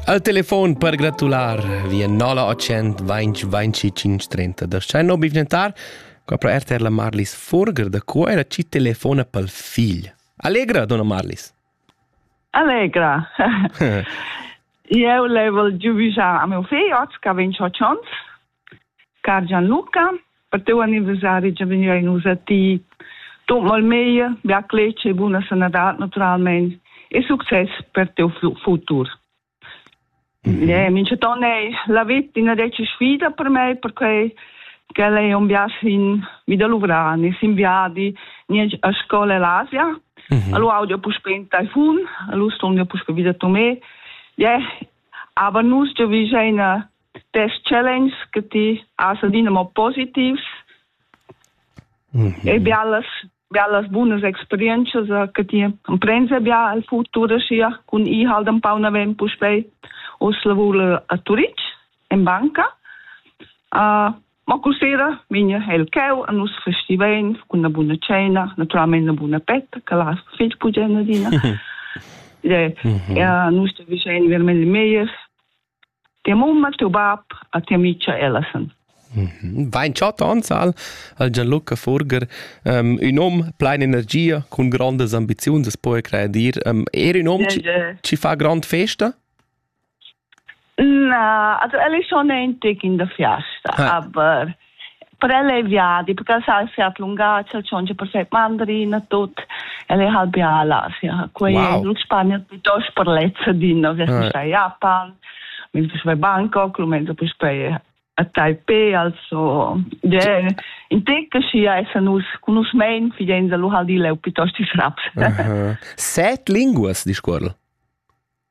Al telefon per gratular via 0800 20 25 30 da Schein no bivgentar qua pro RTR la Marlis Furger da qua era ci telefona pel figl. Allegra, donna Marlis. Allegra. Eu level giuvisar a meu fei oz, che vegn Car Gianluca, per teu anniversari già vegniva in nus a ti. Tut mal meglio, bia clec e buna sanadad naturalmente e succes per teu futur. Mm-hmm. Eh, minceton è la vita una decima sfida per me perché quella è un viaggio in vita luvrani, in viadi a scuola all'Asia. Mm-hmm. Allo audio può spenta iPhone, allo studio può spenta vita tu me. Yeah, aber nus già vicina test challenge che ti has adina mo positivs mm -hmm. e bialas bellas bunas experiences che ti emprendes bia el futur sia cun i halt un pau naven puspei os lavur a Turitg in banca uh, ma cu sera vegna el cheu a nus festiven cun una buna cena naturalmente una buna petta che la fig pugena dina e mm -hmm. uh, nus te visein veramente meier Tia mamma, tiu bab e tia micha Ellison. Vain chatta ansal al Gianluca Furger um, ün hom plein energia cun grandas ambiziuns as po credir. Um, er ün hom yeah, yeah. ci fa grand festa? Na, also el è schon ein Tag in der Fiesta, ah. aber per el è viadi, perché el sa sia lungace, el c'è per fare mandarin a tutto, el è halb a l'Asia. Quei wow. è in Spagna piuttosto per lezza di no, vi si sta a Japan, mi si sta a Bangkok, lo mezzo per stare a Taipei, also yeah. in te che si essa nus kunus mein fidenza lu hal di leu piuttosto is raps. uh -huh. Set linguas di scuola.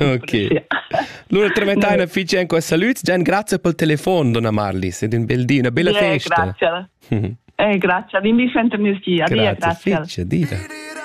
Ok. Lura tramettaina fitg en questa salüts. Gian, grazie pel telefon, donna Marlis, ed un bel di, una bella festa. Grazie. Eh, grazie. Vin vi senter mio ski. Adieu, grazie. grazie. Fitch, adieu.